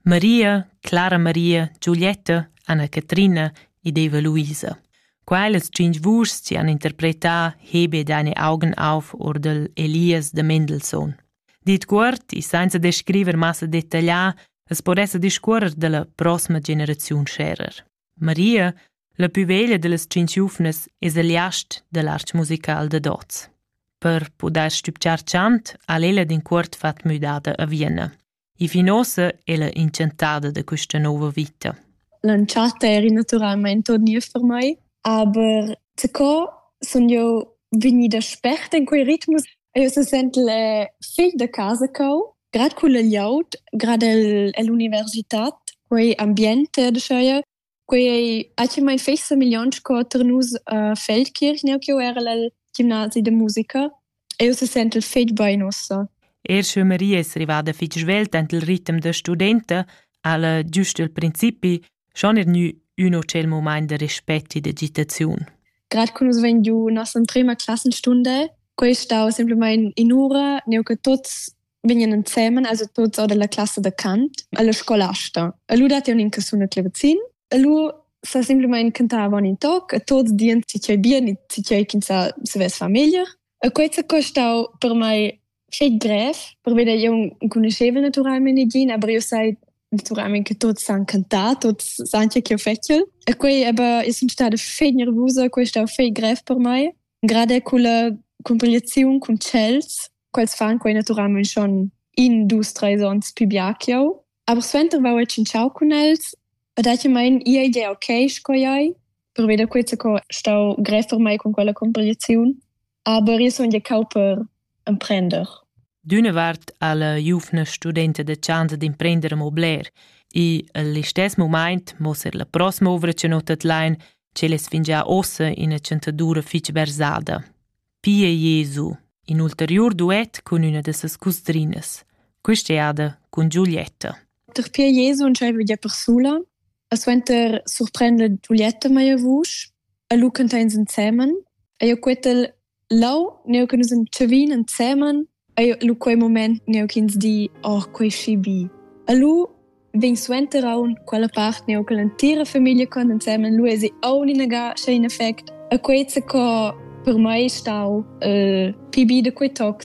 Maria, Clara Maria, Giulietta, Anna Catrina ed Eva Luisa. Quellas tschintg vuschs ci han interpretà Hebe deine Augen auf oder Elias de Mendelssohn. Dit cuort e senza descriver massa detaglià es por esser discuorrer della prossima generaziun scherer. Maria, la pü veglia dellas tschinch giuvnas, es el jast da l'arch musical dad hoz. Per pudair stübgiar chant ha'l ella d'incuort fat müdada a Vienna. E fin uossa ella inchantada da quista nouva vita. L'entschatta era naturalmaing turnier per mai, aber sco sun io vegnida sperta in quei ritmus, io se sent le figl da casa cau Grad culla glieud, grad el, ell'universitad, quei ambient dscheu, quei ei actualmein fetg semigliont sco tar nus a Feldkirch, neu ch'jeu erel el gimnasi da musica. Eu se sentel fetg bein ussa. Er sch'eu Maria es rivada fich svelt ant il ritm da studenta, ha'la giust il principi schon er gnü ün hotel momaint da respect e d'agitaziun. Grad cum es vegn giù nossa emprema classenstunde, quei stau semplamain in ura, neu che tuts vegnan ensemen, also tuts or della classe da Kant, alla scolasta. E lu dat un in casuna clevazin, e lu sa semplamain cantava un in toc, e tuts dien si cei bien, si cei chinsa se ves famiglia. E quei sa costau per mai Schet grev, perveda jeu enconuschevel naturalmein negin, aber jeu sai naturalmein che tuts san cantar, tuts san che ch'jeu fetschel. E quei aber e sun stada fei nervusa, quei stau fei grev per mei. Gerade culla cumpigliaziun cun tschels, quels fan quei naturalmein schon in, dus, treis onns pli bia ch'jeu. Aber suenter vau e tschintschau cun els e datimain ia idea ok sco ei, perveda quei co stau grev per mei con quella cumpigliaziun. Aber io sun giacau per emprender. D'üna vart ha la giuvna studenta da chasa d'imprender amo bler e al istess mumaint mossa er la prossima ovra che notat lain ch'el es fingià ossa ina chantadura fich versada. Pia Jesu, in ulteriur duet cun üna da ses cusdrinas, quist'eada cun Giulietta. Dapi Jesu nun giaiva gia persula. E suenter surprenda Giulietta meia vusch e lu canta ins ensemen. Eir quetel lau, neu che nus entschavin ensemen, eir lu quei moment neu ch'ins di, oh, quei schi bi. E lu vegn suenter aunc quella part neu che l'entira famiglia con ensemen lu esi aunc inagà scha in effect. E quei sa co per mei stau uh, pi bi da quei toc.